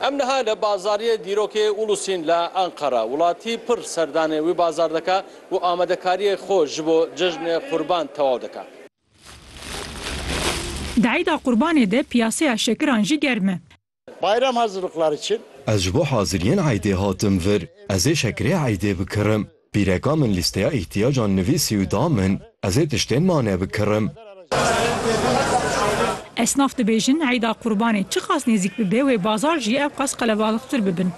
Em niha li Bazariyê Dîrokê Ulusîn li Enqera. Welatî pir serdanê wî bazar dike û amadekariyê xwe ji bo cejnê Qurban tewaw dike. Di Eîda Qurbanê de piyaseya şekiran jî germ e. Bayram hazirlikleri çin? Ez ji bo haziriyên Eîdê hatim vir. Ez ê şekirê Eîdê bikirim. Pîreka min lîsteya îhtîyacan nivîsî û da min, ez ê tiştên mane bikirim. Esnaf dibêjin Îda Qurbanê çiqas nêzîk bibe wê bazar jî ew qas qelebalixtir bibin.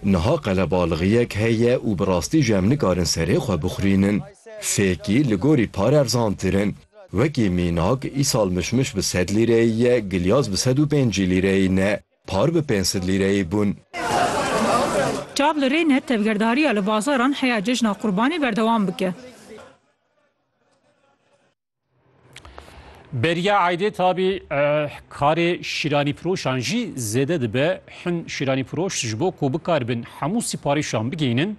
Niha qelebalixiyek heye û bi rastî jî em nikarin serê xwe bixwînin. Fêkî li gorî par erzantir in. Wekî mînak îsal mişmiş bi sed lîreyî ye, gilyas bi sed û pêncî lîreyî ne. Par bi pênc sed lîreyê bûn. Çav li rê ne tevgerdariya li bazaran heya cejna Qurbanê berdewam bike. Beriya Aydê Tabî karê şîranîfiroşan jî zêde dibe. Hin şîranîfiroş ji bo ku bikaribin hemû sîparîşan bigihînin,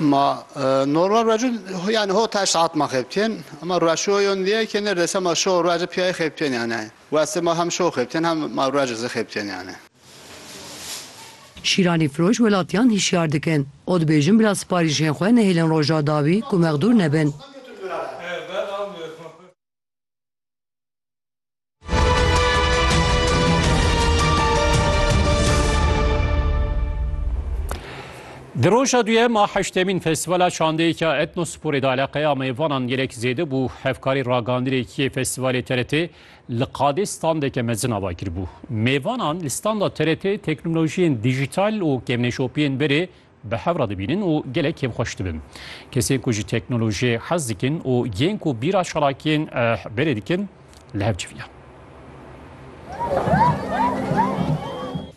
Ma normal racû yani ho teş saat ma xebtên ama raşû yon diye ki ne dese ma şo racû piyayê xebtên yani. Weste ma hem şo xebtên hem ma racû zi xebtên yani. Şîranîfiroş welatiyan hişyar dikin û dibêjin bila siparîşên xwe nehêlin roja dawî ku mexdûr nebin. Di roja duyem a heştemîn festîvala şandeyêka etnosporê de eleqeya mêvanan gelek zêde bû hevkarî ragandîrêkiyê festîvalê TRT li qadê standeke mezin ava kiribû. Mêvanan li standa TRT teknolojiyên dijîtal û kemneşopiyên berê bi hev re dibînin û gelek kêfxweş dibin. Kesên ku ji teknolojiyê hez dikin û yên ku bîra çalakiyên eh berê dikin li hev civiya.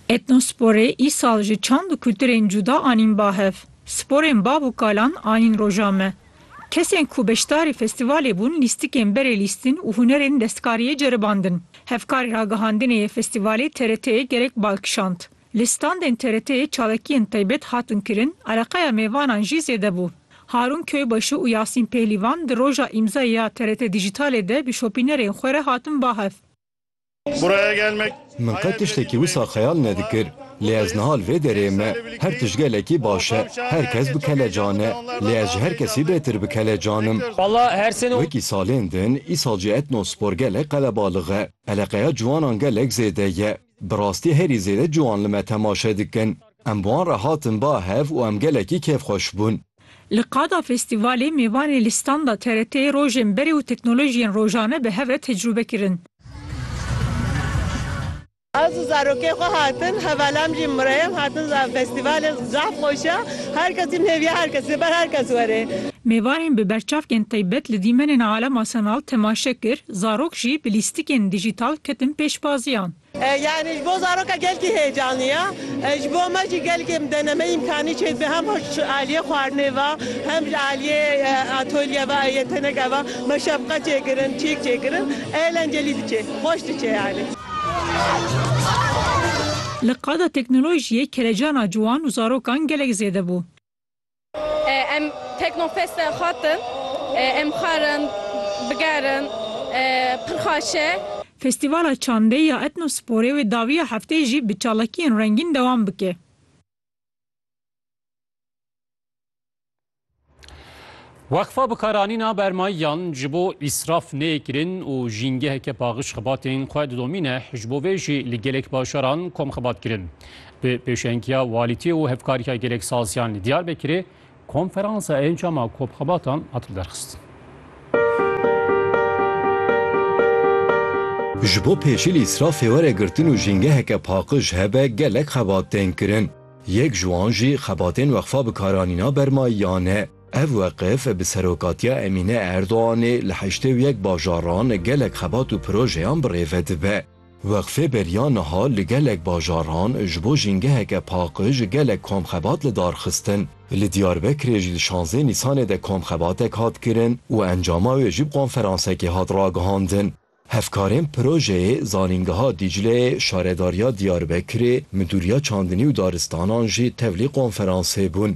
Ethnosporê îsal ji çand û kulturên cuda anîn ba hev. Sporên bav û kalan anîn roja me. Kesên ku beşdarî festîvalê bûn lîstikên berê lîstin û hunerên destkariyê ceribandin. Hevkarî ragihandinê yê festîvalê TRT'ê gelek bal kişand. Li standên TRT'ê çavekiyên taybet hatin kirin, ereqeya mêvanan jî zêde bû. Harûn Köybaşu û Yasîn Pehlivan di roja îmzayê ya TRT Dijîtalê de bi şopînerên xwe re hatin ba hev. Min qet tiştekî wisa xeyal nedikir, lê ez niha li vê derê me. Her tişt gelekî baş e, her kes bi kelecan e, lê ez ji her kesî bêtir bi kelecan im. Wekî salên din, îsal jî Etnospor gelek qelebalix e. Eleqeya ciwanan gelek zêde ye. Bi rastî herî zêde ciwan li me temaşe dikin. Em bi wan re hatin ba hev û em gelekî kêfxweş bûn. Li qada festîvalê mêvanê li standa TRT'ê rojên berê û teknolojiyên rojane bi hev re tecrûbe kirin. Ez û zarokên xwe hatin, hevalan jî mireyên hatin za festîvalê zaf xweş e. Her kes jî nêviya her kesî ye, ber her kes were. Mêvanên bi berçavkên taybet li dîmenên alema sanal temaşe kir. Zarok jî bi lîstikên dîjîtal ketin pêşbaziyan. Yanî ji bo zaroka gelkî heyecanî ye. Ji bo me jî gelkê bi denemeyî îmkanî çê dibe hem ji aliyê xwarinê ve hem ji aliyê atolye ve ê teneke ve me şefqet çê kirin, çîk çê kirin ê lencelî diçê, xweş diçê yanî. Li qada teknolojiyê kelecana ciwan û zarokan gelek zêde bû. Em Teknofest e xwatin. Em xwarin, bigerin, pir xweş e. Festîvala Çandê ya Etnosporê wê dawiya hefteyê jî bi çalakiyên rengîn dewam bike. Weqfa Bikaranîna Bermayiyan ji bo îsraf neyê kirin û jîngeheke paxij xibatên xwe didomîne, ji bo vê jî li gelek bajaran kom xibat kirin. Bi pêşengiya Walîtî û Hevkariya Gelek Saziyan li Diyarbekirê konferansa encama komxebatan hat lidarxistin. Ji bo pêşî li îsrafê were girtin û jîngeheke paxij hebe gelek xebat tên kirin. Yek ji wan jî xebatên Weqfa Bikaranîna Bermayiyan e. Ev weqif bi serokatiya Emîne Erdoganê li heştê û yek bajaran gelek xebat û projeyan bi rêve dibe. Weqfê beriya niha li gelek bajaran ji bo jîngeheke paqij gelek komxebat li dar xistin. Li Diyarbekirê jî di şanzdeh Nîsanê de komxebatek hat kirin û encama wê jî bi konferansekê hat ragihandin. Hevkarên projeyê Zanîngeha Dîcleyê, Şaredariya Diyarbekirê, Midûriya Çandinî û Daristanan jî tevlî konferansê bûn.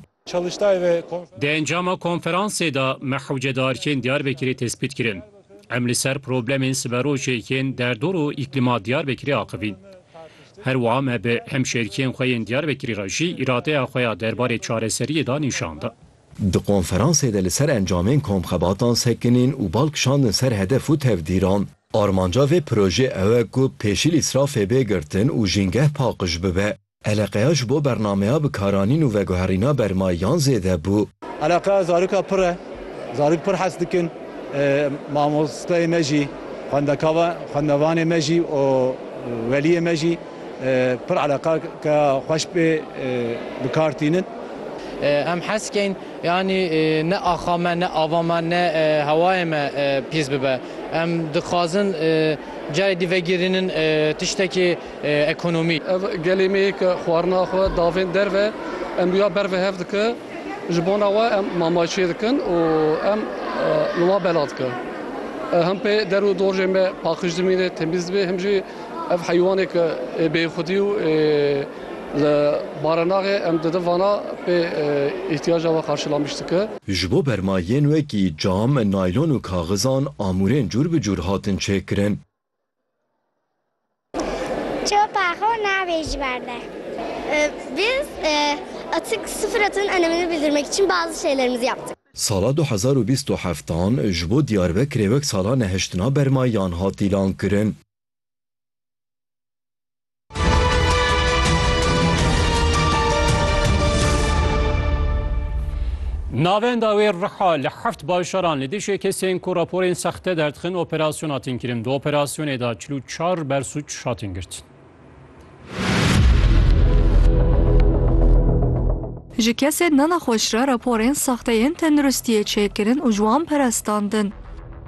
Di encama konferansê de me hewce diarkên Diyarbekirê tespît kirin. Em li ser problemên siberojê yên derdor û îklîma Diyarbekirê axivîn. Her wiha me bi hemşêrkiyên xwe yên Diyarbekirê re jî îradeya xwe ya derbarê çareseriyê de nîşan da. Di konferansê de li ser encamên komxebatan sekinîn û bal kişandin ser hedef û tevdîran. Armanca vê projeyê ew e ku pêşîl îsrafê bê girtin û jîngeh paqij bibe. Eleqeya ji bo bernameya bikaranîn û veguherîna bermayiyan zêde bû. Eleqeya zarika pir e. Zarok pir hez dikin. Mamosteyê me jî, xwendevanê me jî û weliyê me jî pir eleqeke xweş pê bi kar tînin. Em hez dikeyn yanî ne axa me, ne ava me, ne hewayê me pîs bibe. Em dixwazin carê dî vegirînin tiştekî. ekonomî. Ev gelê me ye ke xwarina xwe davênt derve, em rûya ber ve hev dike, ji bona we em mamay çê dikin û em li wan bela dikin. Him pê der û dorjên me paqij dimîne, temîz dibe, him jî ev heywanê ke ê bêxwedî û ê li barinaxê em didin vana pê îhtiyaca we qarşîlamîş dike. Ji bo berma yên wekî cam, naylon û kaxizan amûrên cûr bi cûr hatin çêkirin. Çopa xo navê ji ber de. Biz atik sıfır atının önemini bildirmek için bazı şeylerimizi yaptık. Sala du hezar û bîst û heft an ji bo Diyarbekirê wek sala nehiştina bermayan hat îlankirin. Navenda wê riha li heft bajaran li dijî kesên ku raporên sexte derdixin operasyona hatin kirin. Di operasyonê de çil û çar bersûc hatin girtin. Ji kesên nenaxweş re raporên sexteyên tenduristiyê çêkirin û ji wan perestandin.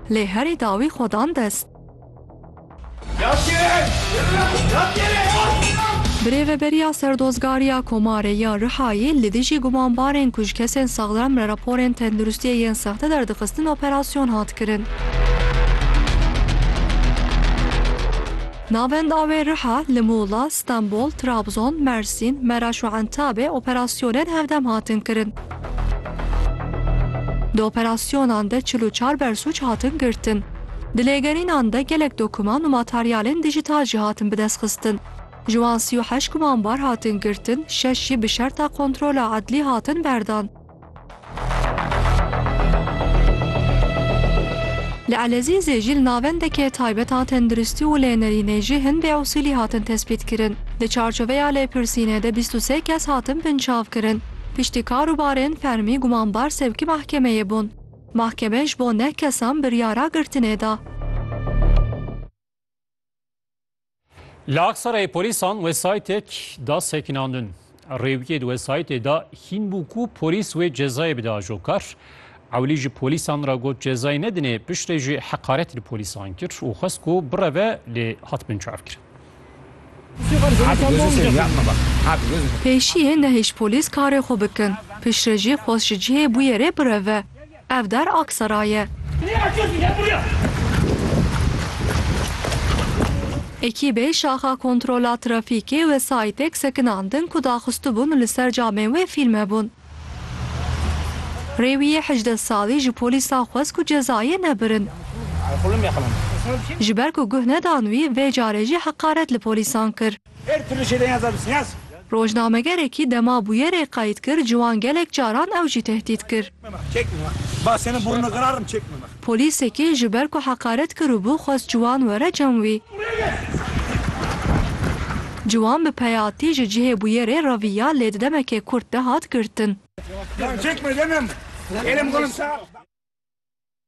Lê herî dawî xwe dan dest. Birêveberiya Serdozgariya Komarê ya Rihayê li dijî gumanbarên ku ji kesên saxlem re raporên tenduristiyê yên sexte derdixistin operasyon hat kirin. Navenda wê Riha, li Muğla, Stenbol, Trabzon, Mersîn, Meraş û Entabê operasyonên hevdem hatin kirin. Di operasyonan de çil û çar bersûc hatin girtin. Di lêgerînan de gelek dokuman û materyalên dîjîtal jî hatin bidestxistin. Ji wan sî û heşt gumanbar hatin girtin, şeş jî bi şerta kontrola edlî hatin berdan. Li Elezîzê jî li navendeke taybet a tendirustî û lênerînê jî hin bêusîlî hatin tespîtkirin. Di çarçoveya lêpirsînê de bîst û sê kes hatin binçavkirin. Piştî kar û barên fermî gumanbar sevkî mehkemeyê bûn. Mahkeme ji bo neh kesan biryara girtinê da. Li Aksarayê polîsan wesaytek da sekinandin. Rêwiyê di wesaytê de hîn bû ku polîs wê cezayê bide ajokar. Ewlî ji polîsan re got cezayê nedinê, piştê jî heqaret li polîsan kir û xwest ku bireve lê hat binçavkirin. Pêşiyê nehîş polîs karê xwe bikin. Piştre jî xwest ji cihê bûyerê bireve. Ev der Aksaray ye. Ekîbê Şaxa Kontrola Trafîkê wesayîtek sekinandin ku daxistibûn li ser camên wê fîlme bûn. Rêwîyê hejdeh salî ji polîsan xwest ku cezayê nebirin. Ji ber ku guh nedan wî vê carê jî heqaret li polîsan kir. Rojnamegerekî dema bûyerê qeyd kir ciwan gelek caran ew jî tehdît kir. Polîsekî ji ber ku heqaret kiribû xwest ciwan were cem wî. Ciwan bi peyatî ji cihê bûyerê reviya lê di demeke kurt de hat girtin.